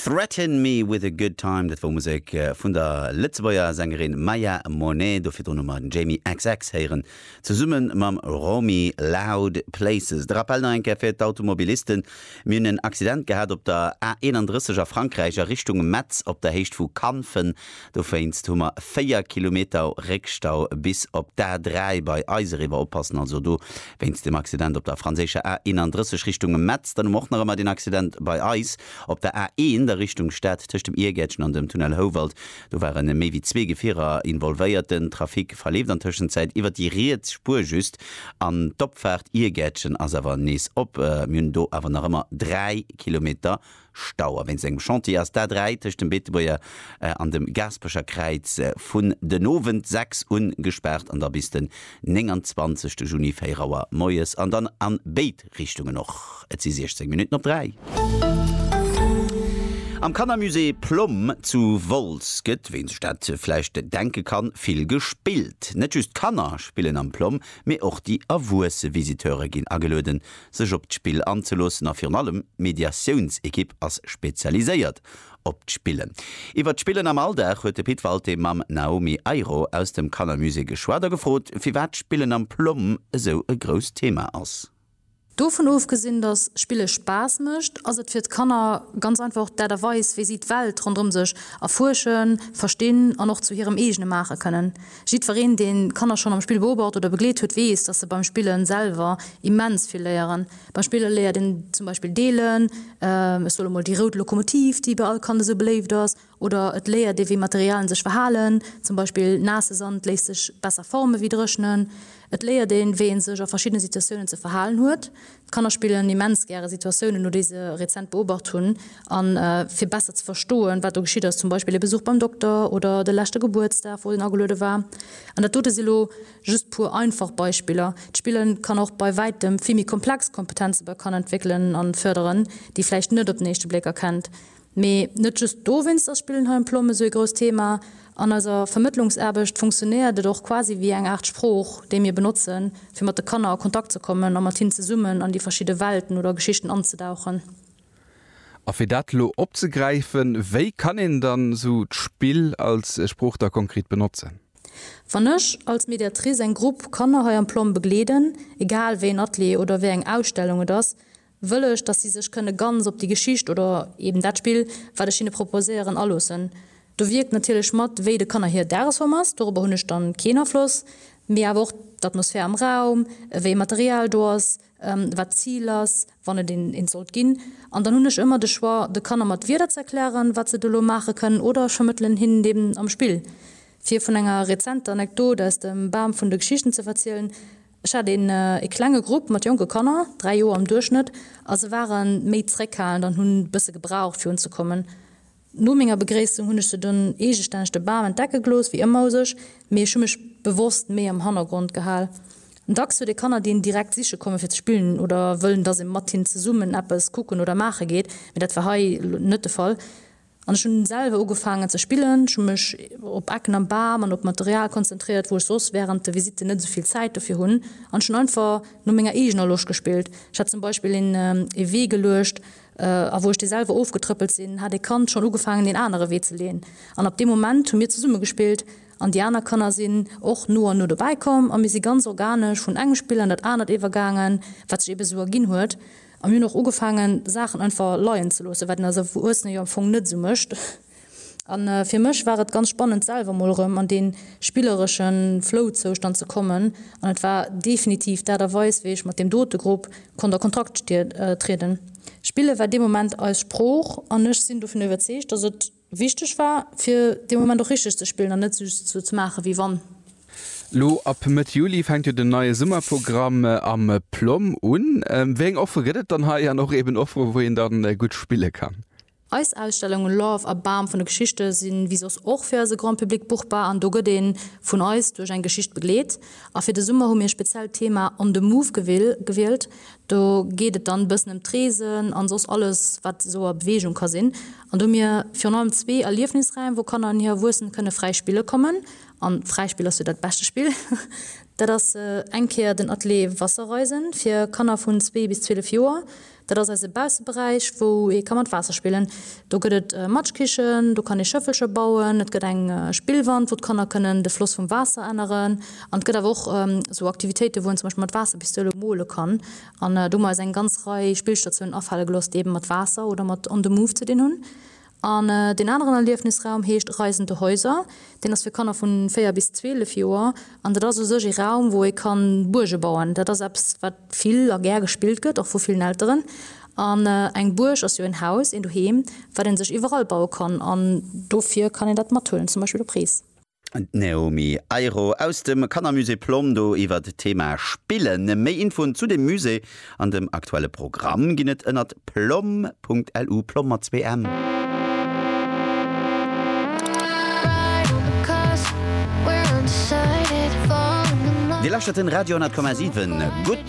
Threaten me with a good time, dat wor Musek vun der Lëtzebuerger Sängerin Maya Monet. Do virdrun hu mer den Jamie xx héieren zesumme mam Romy Loud Places. De Rappel nach eng Kéier fir d'Automobilisten, Mir hunn en Accident gehat op der A 31 a Frankräich a Richtung Metz op der Héicht vu Canfen. Dowéinst hu mer 4 Kilometer Réckstau bis op d'A3 bei eis eriwwer. Oppassen also do wéinst dem Accident op der franséischer A31 Richtung Metz. Dann hu mer och nach ëmmer den Accident bei eis op der A1 a Richtung Stad tëscht dem Iergäertchen an dem Tunnel Houwald. Do ware méi wéi zwee Gefierer involvéiert. Den Trafic verleeft an Tëschenzäit iwwert déi riets Spuer just an d'Opfaart Iergäertchen ass awer nees op. Mir hunn do awer nach ëmmer 3 Kilometer Stau a wéinst engem Chantier ass d'A3 tëscht dem Beetebuerger an dem Gaaspecher Kräiz vun den Owend 6 un gespaart an da bis den 29 Juni 4 Auer moies an dann an béid Richtungen och. Et si 16 Minutten op 3. Am Kannermusée Plomm zu Wolz gëtt, wéi een sech dat vläicht denke kann, vill gespillt. Net just d'Kanner spillen am Plomm, mee och déi erwuesse Visiteure ginn agelueden sech op d'Spill anzeloossen a virun allem d'Mediatiounsekipp ass spezialiséiert op d'Spillen. Iwwer d'Spillen am Alldag huet de Pit Walté mam Naomi Ayro aus dem Kannermusée geschwat a gefrot, firwat d'Spillen am PLOMM esou e grousst Thema ass. Dovun ofgesinn, dass Spille Spaass mécht, ass et fir d'Kanner ganz einfach och d'Aart a Weis, wéi si d'Welt ronderëm sech erfuerschen, verstinn an och zu hirem eegene maache kënnen. Jiddwereen, deen d'Kanner schonn am Spill beobacht oder begleet huet, weess, dass se beim Spillen selwer immens vill léieren. Beim Spillen léiert een zum Beispill deelen, ech soe lo mol déi rout Lokomotiv, déi bei all Kand esou beléift ass, oder et léiert ee wéi Materialien sech verhalen, zum Beispill naasse Sand léisst sech besser forme wéi dréchnen. Et léiert een, wéi een sech a verschiddene Situatiounen ze verhalen huet, D'Kanner spillen immens gäre Situatiounen no, déi se rezent beobacht hunn. A fir besser ze verstoen, wat do geschitt ass, zum Beispill e Besuch beim Dokter oder de leschte Gebuertsdag, wou en ageluede war. An dat dote si lo just puer einfach Beispiller. D'Spille kann och bei wäitem vill méi komplex Kompetenze bei Kanner entwéckelen a fërderen, déi vläicht net op den éischte Bléck erkennt. Mee net just dowéinst ass Spillen hei um Plom esou ee grousst Thema. An eiser Vermëttlungsaarbecht funktionéiert et och quasi wéi eng Aart Sprooch, déi mir benotzen, fir mat de Kanner a Kontakt ze kommen a mat hinnen zesummen an déi verschidde Welten oder Geschichten anzedauchen. A fir dat elo opzegräifen, wéi kann een dann esou d'Spill als Sprooch da konkret benotzen? Wann ech als Mediatrice eng Grupp Kanner hei am Plom begleeden, egal wéi een Atelier oder wéi eng Ausstellung et ass, wëll ech, dass si sech kënne ganz op déi Geschicht oder eben dat Spill, wat ech hinne proposéieren, aloossen. Do wierkt natierlech mat, wéi de Kanner hir Dagesform ass, dorobber hunn ech dann keen Afloss, mee awer och d'Atmosphär am Raum, wéi e Material do ass, wat d'Zil ass, wann et eent sollt ginn. An dann hunn ech ëmmer de Choix, de Kanner mat Wierder ze erklären, wat se do elo maache kënnen, oder ech vermëttelen hinnen et eben am Spill. Fir vun enger rezenter Anekdot aus dem Bam vun de Geschichten ze verzielen. Ech hat een ee klenge Grupp mat jonke Kanner, 3 Joer am Duerchschnëtt, a se ware méi zréckhalend an hunn bësse gebraucht fir unzekommen. No menger Begréissung hunn ech se dunn eegestänneg de Bam entdecke gelooss, wéi ëmmer u sech, mee ech hu mech bewosst méi am Hannergrond gehal. Dacks huet ee Kanner déi een direkt siche komme fir ze spillen oder wëllen dass ee mat hinnen zesummen eppes kucken oder maache geet, mee dat war hei elo net de Fall. An ech hunn selwer ugefaangen ze spillen. Ech hunn mech op Ecken am Bam an op Material konzentréiert, wou ech soss wärend de Visitten net esou vill Zäit dofir hunn, an ech hunn einfach no menger eegener Loscht gespillt. Ech hat zum Beispill een ee Wee geluecht, a wou ech dee selwer ofgetrëppelt sinn, hat ee Kand schonn ugefaangen een anere Wee ze leeën. An ab deem Moment hu mir zesumme gespillt an déi aner Kanner sinn och no an no dobäi komm a mir si ganz organesch vun engem Spill an dat anert iwwergaangen, wat sech eebe esou erginn huet. A mir hunn och ugefaangen, Saachen einfach leien ze loossen, wat een als Erwuessene jo am Fong net esou mécht. A fir mech war et ganz spannend, selwer emol erëm an dee spilleresche Flow-Zoustand ze kommen. An et war definitiv d'Aart a Weis, wéi ech mat deem dote Grupp konnt a Kontakt trieden. Spille war dee Moment eis Sprooch an ech sinn dovun iwwerzeegt, dass et Wichteg war, fir dee Moment och richteg ze spillen an net just sou ze maachen, wéi wann. Lo ab Mëtt Juli fänkt jo den neie Summerprogramm am PLOM un. Wéi eng Offere gëtt et dann hei an och eben Offere wou een dann gutt spille kann? Eis Ausstellungen Love a Bam vun de Geschichte si wéi soss och fir eise Grand Public buchbar an do gëtt ee vun eis duerch eng Geschicht begleet. A fir de Summer hu mir speziell d'Thema On the Move gewielt, Do geet et dann e bëssen ëm d'Reesen an soss alles wat esou a Beweegung ka sinn. An do hu mir virun allem zwee Erliefnisräim wou Kanner an hir Erwuessen kënne fräi spille kommen. An fräi Spill ass jo dat beschte Spill. Dat ass eng Kéier den Atelier Wasserreisen fir Kanner vun zwee bis 12 Joer. Dat ass eise Bausseberäich wou ee ka mat Waasser spillen. Do gëtt et Matschkichen, do kann ee Schëffelcher bauen, et gëtt eng Spillwand, wou d'Kanner kënnen de Floss vum Waasser änneren. An et gëtt awer och esou Aktivitéiten, wou een zum Beispill mat Waasserpistoulen mole kann. An do hu mer eis eng ganz Rei Spillstatiounen afale gelooss, déi eeben mat Waasser oder mat On the Move ze dinn hunn. An deen aneren Erliefnisraum heescht Reisende Häuser. Deen ass fir Kanner vu 4 bis 12 Joer. An dat ass u sech ee Raum, wou ee kann Buerge bauen. Dat ass eppes, wat. vill a gär gespillt gëtt, och vu villen Elteren. An eng Buerg ass jo en Haus, een Doheem, wat ee sech iwwerall baue kann. An dofir kann een dat mathuelen, zum Beispill op Rees. D'Naomie Eiro aus dem Kannermusée Plom do iwwert d'Thema Spillen. Méi Infoen zu dem Musée an dem aktuelle Programm ginn et ënnert. plomm.lu, Plomm mat zwee M. Dir lauschtert den Radio 10,7 gutt.